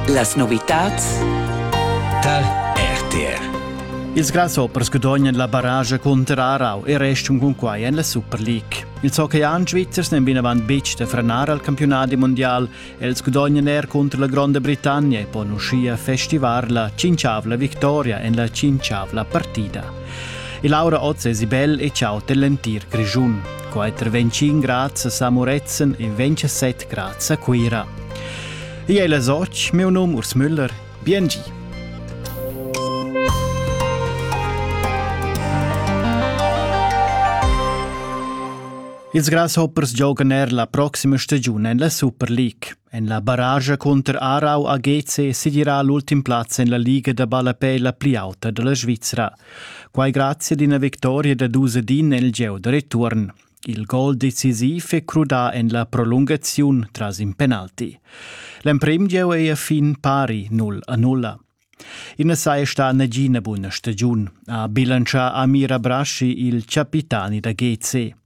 Las novitads tar RTR. Ils grasshoppers gudognan la barrage cunter Aarau e restan cun quai en la Super League. Ils hockeyan svizzers n'en vinavant betg da frenar al campiunat mondial. Els gudognan er cunter la Gronda Britannia e pon uschia festivar la cinciavla victoria en la cinciavla partida. E Laura Oz è Sibel e ciao dell'entir Grischun. Quai tra 25 grads a San Murezzan e 27 grads a Cuira. Io è la Soc, meu num Urs Müller, biengi. Ils Grasshoppers giogan er la proxima stagiun en la Super League. En la barascha cunter Aarau a GC segirà l'ultim plaz en la liga da ballapè la pli auta da la Svizra. Quai grazie ad ina victoria da dus ed in nel gieu da return. Il gol decisiv è crudà en la prolungaziun tras in penalti. L'emprim gieu è a fin pari 0 a 0. I na saja stà nagina buna stagiun, ha bilancià Amira Braschi, il capitani da GC.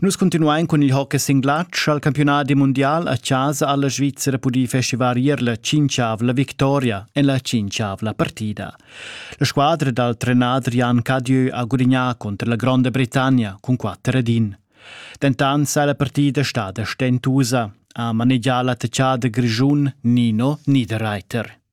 Nus continuain cun il hockey singlatsch al campiunadi mundial a chasa alla Svizzera pudì festivar ier la cinciavla victoria en la cinciavla partida. La squadra dal trenader Jan Cadieu ha gudignà contro la Gronda Britannia cun 4 ed 1. Dentant sei la partida stada stentusa, ha manegià l'attacchà da Grischun Nino Niederreiter.